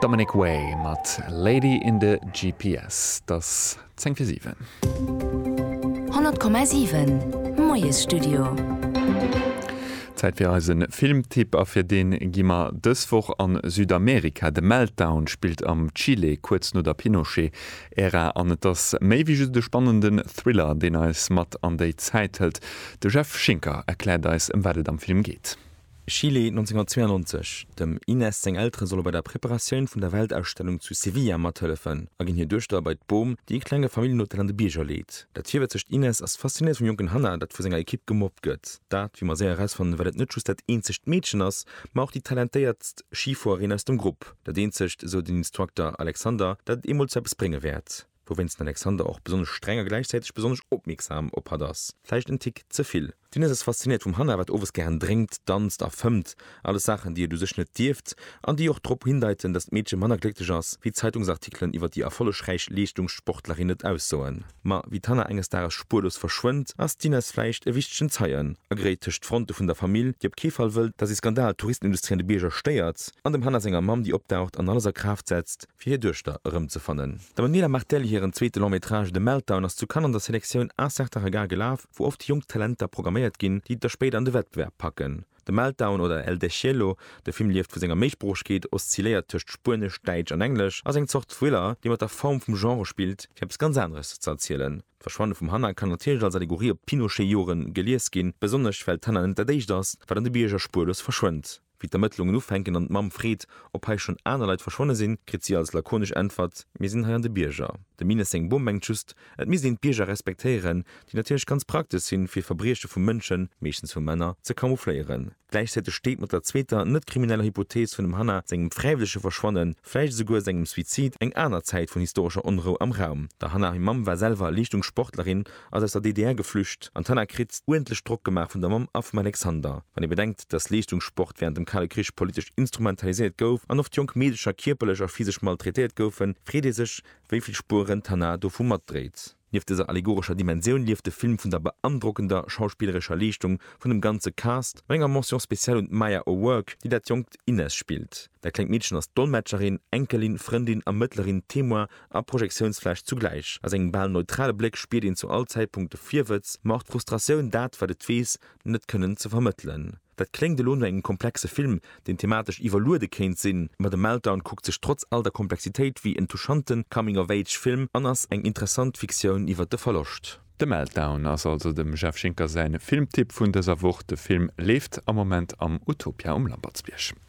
Dominic Way mat Lady in the GPS. Et ass 10 fir 7. 100,7 Moiesstudio. Zäit fir eise Filmtipp, a fir dee gi mer dës Woch a Südamerika. The Meltdown spillt am Chile kuerz no der Pinochet-Ära an et ass méi wéi just e spannenden Thriller, deen eis mat an déi Zäit hëlt. De Jeff Schinker erkläert eis, ëm wat et am Film geet. Chile 1992, Dem Inés seng Eltere solle bei der Preparatioun vun der Weltausstellung zu Sevilla mathëllefen a ginn hir Duechter bei d'Bom, déi e klenge Familljenhotel an de Bierger leet. Dat virwëtzegt Inés ass faszinéiert vum jonken Hannah, dat vu senger Ekipp gemobbt gëtt. Dat, wéi mer séier erausfannen, well et net just dat eenzegt Meedchen ass, ma och déi talentéiertst Schifuerin aus dem Grupp. Dat eenzegt, esou den Instructor Alexander, dat et eemol zu eppes brénge wäert. Wouwéinst den Alexander och besonnesch streng a gläichzäiteg besonnesch opmierksam op hatt ass. Vläicht en Tick ze vill. D'Inès ass faszinéiert vum Hannah, wat owes gären drénkt, danzt a fëmmt. Alles Saachen, déi et u sech net dierft an déi och drop hindeiten, datt d'Meedche manner glécklech ass, wéi d'Zeitungsartikelen iwwer déi erfollegräich Leeschtungssportlerin et aussoen. Ma wéi d'Hannah enges Dages spuerlos verschwënnt, ass d'Inès vläicht e wichtegen Zeien, agréit tëscht d'Fronte vun der Famill, déi op kee Fall wëllt, datt ee Skandal d'Touristenindustrie an de Bierger stéiert, an dem Hannah senger Mamm, déi opdaucht an alles a Kraaft setzt, fir hir Duechter erëmzefannen. D'Emanuela Martelli hiren zweete Long Métrage The Meltdown ass zu Cannes an der Selektioun Un certain regard gelaf, wou oft jonk Talenter programméiert ginn, déi et da spéider an de Wettbewerb packen. The Meltdown oder El Deshielo, de Film lieft vu senger Méisproochegkeet, oszilléiert tëscht Spuenesch, Däitsch an Englesch, ass eng Zort Thriller, dee mat der Form vum Genre spillt, fir eppes ganz aneres ze erzielen. D'Verschwanne vum Hannah kann natierlech als Allegorie op d'Pinochet-Joren gelies ginn, besonnesch well d'Hannah net dat éischt ass, wat an de Bierger spuerlos verschwënnt. Wéi d'Ermëttlungen ufänken an d'Mamm freet, ob hei schonn aner Leit verschwonne sinn, kritt si als lakonesch Äntwert, Mir sinn hei an de Bierger. De Mines seng Bom mengt just, et misst een d'Bierger respektéieren, déi natierlech ganz praktesch sinn, fir Verbrieche vu Mënschen, meeschtens vu Männer, ze camoufléieren. Gläichzäiteg steet mat der zweeter, net krimineller Hypothees vun dem Hannah sengem fräiwëllege Verschwannen, vläicht esouguer sengem Suizid, eng aner Zäit vun historescher Onrou am Raum. Der Hannah hir Mamm war selwer Leeschtungssportlerin ass aus der DDR geflücht an d'Hanna kritt uerdentlech Drock gemaach vun der Mamm a vum Alexander. Wann ee bedenkt, datt Leeschtungssport wärend dem Kale Krich politesch instrumentaliséiert gouf an oft jonk Meedecher kierperlech a physesch maltraitéiert goufen, freet ee sech, wéi vill Spueren d'Hanna dovu matdréit. Nieft dëser allegorescher Dimensioun lieft de Film vun der beandrockender schauspillerescher Leeschtung vun dem ganze Cast an enger Mention spéciale un d'Maya O'Rourke, déi dat jonkt Inez spillt. Dat klengt Meedchen ass Dolmetscherin, Enkelin, Frëndin, Ermëttlerin, Témoin a Projektiounsfläch zugläich. A sengem bal neutrale Bléck spiert een zu all Zäitpunkt de Virwëtz, ma och d'Frustratioun, dat, wat et weess, net kënnen ze vermëttelen. Dat kléngt elo no engem komplexe Film, deen thematesch iwwerluede kéint sinn, ma The Meltdown kuckt sech trotz all der Komplexitéit wéi en touchante Coming-of-Age-Film an ass eng interessant Fiktioun iwwer de Verloscht. The Meltdown ass also dem Jeff Schinker säin Filmtipp vun dëser Woch. De Film leeft am Moment am Utopia um Lampertsbierg.